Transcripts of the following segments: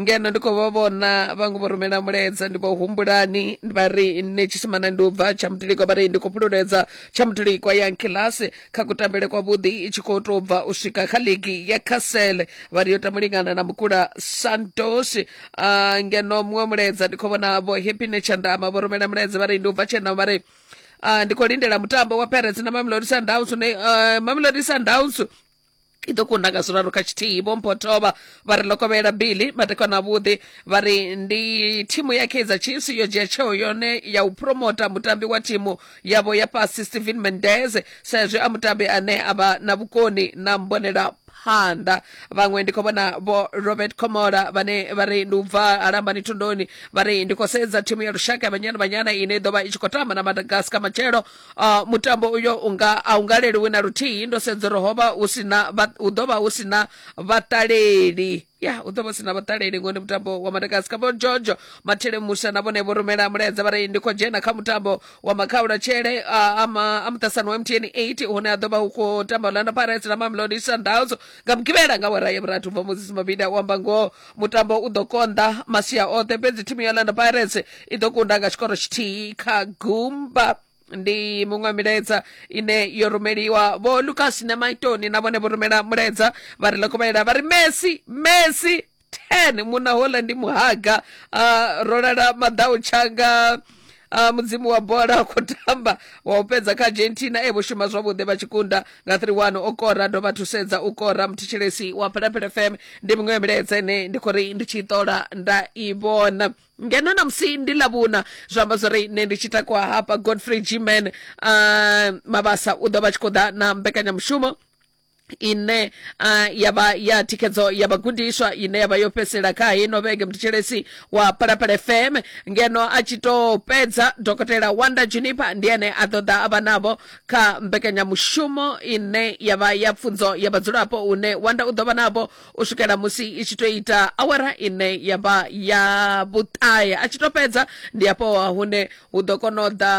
ngeno ndi khou vha vhona vhaṅwe vho rumela mulaedza ndi vho humbulani vha ri nṋe tshisimana ndi u bva tsha mutulikwa vha ri ndi khou fhululedza tsha mutulikwa ya nkilasi kha kutambele kwavhuḓi i tshi khou tou bva u swika kha ligi ya castle vha ri yo tamba lingana na mukula santos uh, ngeno muṅwe mulaedza ndi khou vhona vho happy nechandama vho rumela mulaedza vha ri ndi u bva tshena vha ri uh, ndi khou lindela mutambo wa parents na mamelodi sundowns une uh, mamelodi sundowns i ḓo kunda nga zwiraru kha tshithihi vho mphotovha vha ri lokovhela billy matekwana avhuḓi vha ri ndi thimu ya kaizer chiefs yo dzhia tsheo yone ya u promota mutambi wa thimu yavho ya fhasi stephen mendez sa izwi a mutambi ane a vha na vhukoni na mbonela phanḓa vhaṅwe ndi khou vhona vho robert comola vhane vha ri ndi u bva alambani thondoni vha ri ndi khou sedza thimu ya lushaka ya banyana banyana ine i ḓo vha i tshi khou tamba na madagascar matshelo Uh, mutambo uyo unga a u nga leluwi na luthihi ndo sedza uri ho vha hu si na hu ḓo vha hu si na vhaṱaleli ya hu ḓo vha si na vhaṱaleli ngori ndi mutambo wa madakasi kha vho jojo mathele musa na vhone vho rumela mulaedza vha ri ndi khou dzhena kha mutambo wa makhaula tshele a muṱasano wa mtn 8 hune a ḓo vha hu khou tamba orlando pirates na mamelodi sundowns nga mugivhela nga wara ya vhuratu bva moses mabida u amba ngoho mutambo u ḓo konḓa masia oṱhe fhedzi thimu ya orlando pirates i ḓo kunda nga tshikoro tshithihi kha gumba ndi muṅwe milaedza ine yo rumeliwa vho lucas na maitoni na vhone vho rumela mulaedza vha ri lokovhelela vha ri messi messi ten munna hola ndi muhaga uh, ro lala maḓau tshanga a mudzimu wa bola a khou tamba wa u fhedza kha argentina e vho shuma zwavhuḓi vha tshi kunda nga 31 o kora dovha thusedza u kora muthetshelesi wa phelapele fm ndi miṅwe ya milaedza ine ndi khou ri ndi tshi i ṱola nda i vhona ngeno na musi ndi lavhuna zwa amba zwori nṋe ndi tshi takuwa hafha godfrey gman uh, mabasa u ḓo vha tshi khou ḓa na mbekanyamushumo ine uh, ya vha ya thikhedzo ya vhagudiswa ine ya vha yo fhedzisela kha hino vhege muthethelesi wa palapala fm ngeno a tshi tou fhedza dokotela wanda junipa ndi ene a ṱoḓa a vha navho kha mbekanyamushumo ine ya vha ya pfunzo ya vhadzulapo une wanda u ḓo vha navho u swikela musi i tshi tou ita awara ine ya vha ya vhuṱahe a tshi tou fhedza ndi afho hune hu ḓo kona u ḓa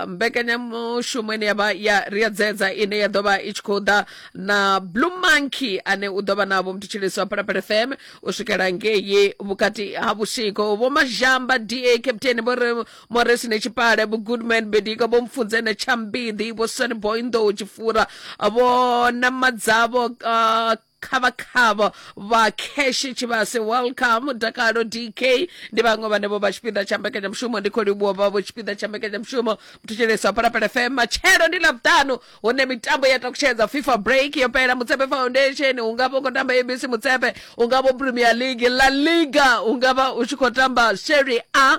mbekanyamushumo ine ya vha ya ri a dzedza ine ya ḓo vha i tshi khou ḓa na blue monkey ane u ḓo vha na vho mthetshelesi wa phalaphala fm u swikela ngei vhukati ha vhusiku vho mazhamba da captain vho re moresi ne tshipale vho goodman bedika vho mfunze ne tshambiḓi vho sonboy nḓou tshifura vho namadzavho uh, khavhakhavha vha cash tshivhase welcome dakalo dk ndi vhaṅwe vhane vho vha tshipiḓa tsha mbekanyamushumo ndi khou livhuwa vha vho tshipiḓa tsha mbekanyamushumo muthutshelesi wa phalaphala fm matshelo ndi ḽavhuṱanu hune mitambo ya takutshedza fifa break yo fhela mutsepe foundation u nga vha u khou tamba abc mutsepe u nga vho premier league la liga u nga vha u tshi khou tamba serie a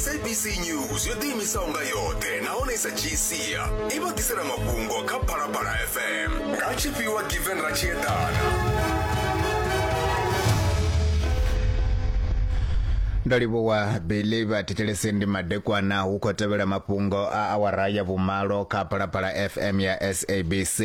sabc news yo ḓiimisaho nga yoṱhe nahone i sa dzhii sia i vha ḓisela mafhungo kha phalaphala fm nga tshifhiwa given ratshiedana ndo livhuwa billy vhathetshelesi ndi madekwana hu khou tevhela mafhungo a awara ya vhumalo kha phalaphala fm ya sabc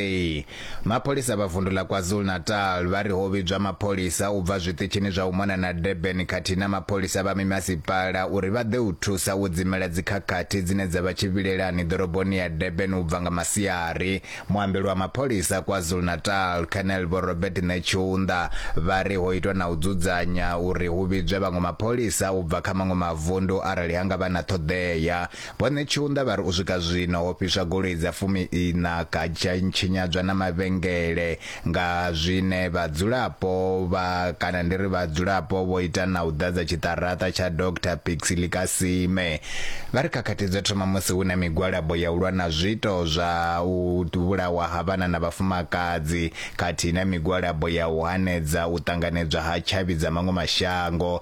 Mapholisa vha vundu ḽa KwaZulu-Natal vha ri ho vhidzwa mapholisa u bva zwiṱitshini zwa u mona na Durban khathihi na mapholisa vha mimasipala uri vha ḓe u thusa u dzimela dzikhakhathi dzine dza vha tshivhilelani ḓoroboni ya Durban u bva nga masiari. Muambeli wa mapholisa KwaZulu-Natal, Colonel Vho Robert Netshiunda, vha ri ho itwa na u dzudzanya uri hu vhidzwe vhaṅwe mapholisa u bva kha maṅwe mavundu arali ha nga vha na ṱhoḓea. Vho Netshiunda vha ri u swika zwino ho fhiswa goloi dza fumi-iṋa kha tsha tshinyadzwa na mavhengele nga zwine vhadzulapo vha kana ndi ri vhadzulapo vho ita na u ḓadza tshiṱaraṱa tsha Doctor Pixley Kasime. Vha ri khakhathi dzo thoma musi hu na migwalabo ya u lwa na zwiito zwa u vhulawa ha vhana na vhafumakadzi khathihi na migwalabo ya u hanedza u ṱanganedzwa ha tshavhi dza maṅwe mashango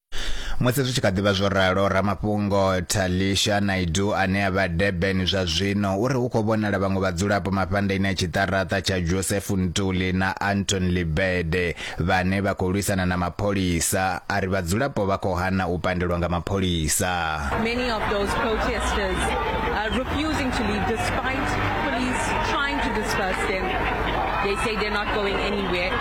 Musi zwi tshi kha ḓivha zwo ralo, ramafhungo Talisha Naidu ane a vha Durban zwa zwino uri hu khou vhonala vhaṅwe vhadzulapo mafhandaini a tshiṱaraṱa tsha Joseph Ntuli na Anton Libede vhane vha khou lwisana na mapholisa a ri vhadzulapo vha khou hana u pandelwa nga mapholisa. Many of those protesters are refusing to leave despite police trying to disperse them. They say they're not going anywhere.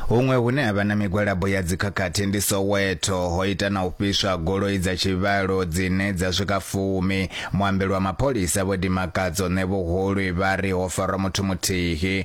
Huṅwe hune ha vha na migwalabo ya dzikhakhathi ndi Soweto ho ita na u fhiswa goloi dza tshivhalo dzine dza swika fumi. Muambeli wa mapholisa Vho Dimakadzo Ṋevhuhulwi vha ri ho farwa muthu muthihi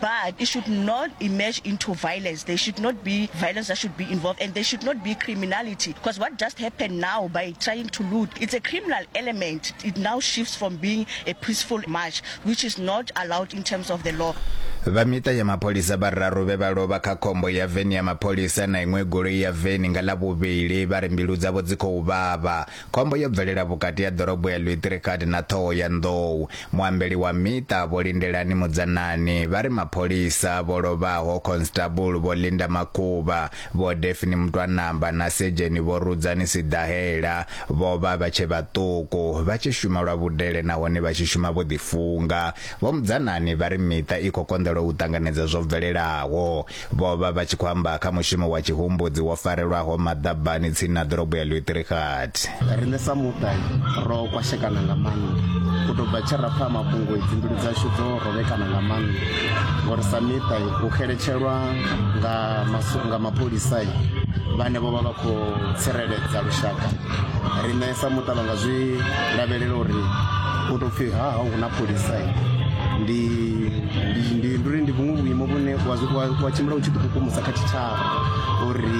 but it should not emerge into violence. There should not be violence that should be involved, and there should not be criminality. Because what just happened now by trying to loot, it's a criminal element. It now shifts from being a peaceful march, which is not allowed in terms of the law. vha miṱa ya mapholisa vhararu vhe vha lovha kha khombo ya veni ya mapholisa na iṅwe goloi ya veni nga ḽa vhuvhili vha ri mbilu dzavho dzi khou vhavha Khombo yo bvelela vhukati ha ḓorobo ya Lwitirikati na Ṱhoho ya Nḓou. Muambeli wa miṱa Vho Lindelani Mudzanani vha ri mapholisa vho lovhaho Constable Vho Linda Makhuvha, Vho Daphne Mutwanamba na Sedzheni Vho Rudzani Siḓahela vho vha vha tshe vhaṱuku vha tshi shuma lwa vhudele nahone vha tshi shuma vho ḓifunga. Vho Mudzanani vha ri miṱa i khou konḓelwa u ṱanganedza zwo bvelelaho. Vho vha vha tshi khou amba kha mushumo wa tshihumbudzi wo farelwaho maḓabani tsini na ḓorobo ya Lutherighat. Riṋe sa muṱa ro kwashekana nga maanḓa u tou bva tshe ra pfa mafhungo idzi mbilu dzashu dzo rovhekana nga maanḓa ngori sa miṱa u xeletshelwa nga mapholisa vhane vho vha vha khou tsireledza lushaka Riṋe sa muṱa vha nga zwi lavhelela uri u tou pfhi ha hau hu na pholisa ndi ndi ndi ndi uri ndi vhuṅwe vhuimo vhune wa zwi- wa- wa tshimbila u tshi ḓikukumusa kha tshitshavha uri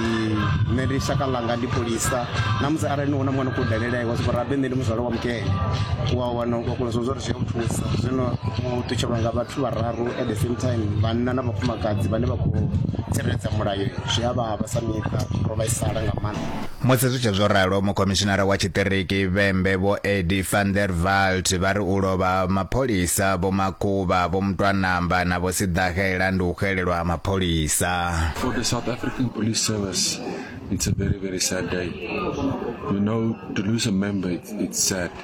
nṋe ndi shaka ḽanga ndi pholisa na musi arali ni hu na mwana khou dalela iwe soko rabe nṋe ndi muzwale wa mukene wa wana wa kona zwo zwo ri zwi a u thusa zwino u ṱutshelwa nga vhathu vhararu at the same time vhanna na vhafumakadzi vhane vha khou tsireledza mulayo zwi a vhavha sa miṱa ro vhaisala nga maanḓa Musi zwi tshe zwo ralo, mukhomishinara wa tshiṱiriki Vhembe Vho Eddie van der Walt vha ri u lovha ha mapholisa Vho Makuba, Vho Mutwanamba na Vho Siḓahela ndi u xelelwa ha mapholisa. For the South African Police Service, it's a very, very sad day. You know, to lose a member, it's, it's sad.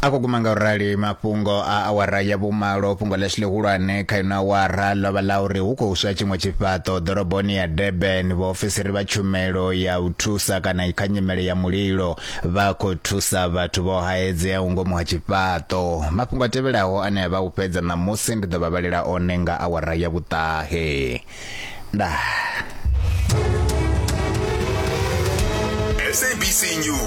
a khou guma nga u rali mafhungo a awara ya vhumalo fhungo ḽashu ḽihulwane kha ino awara ḽo vha ḽa uri hu khou swa tshiṅwe tshifhaṱo ḓoroboni ya durban vhaofisiri vha tshumelo ya u thusa kana kha nyimele ya mulilo vha khou thusa vhathu vho haedzeaho ngomu ha tshifhaṱo mafhungo a tevhelaho ane a vha u fhedza ṋamusi ndi ḓo vha vhalela one nga awara ya vhuṱahe ndaa SABC News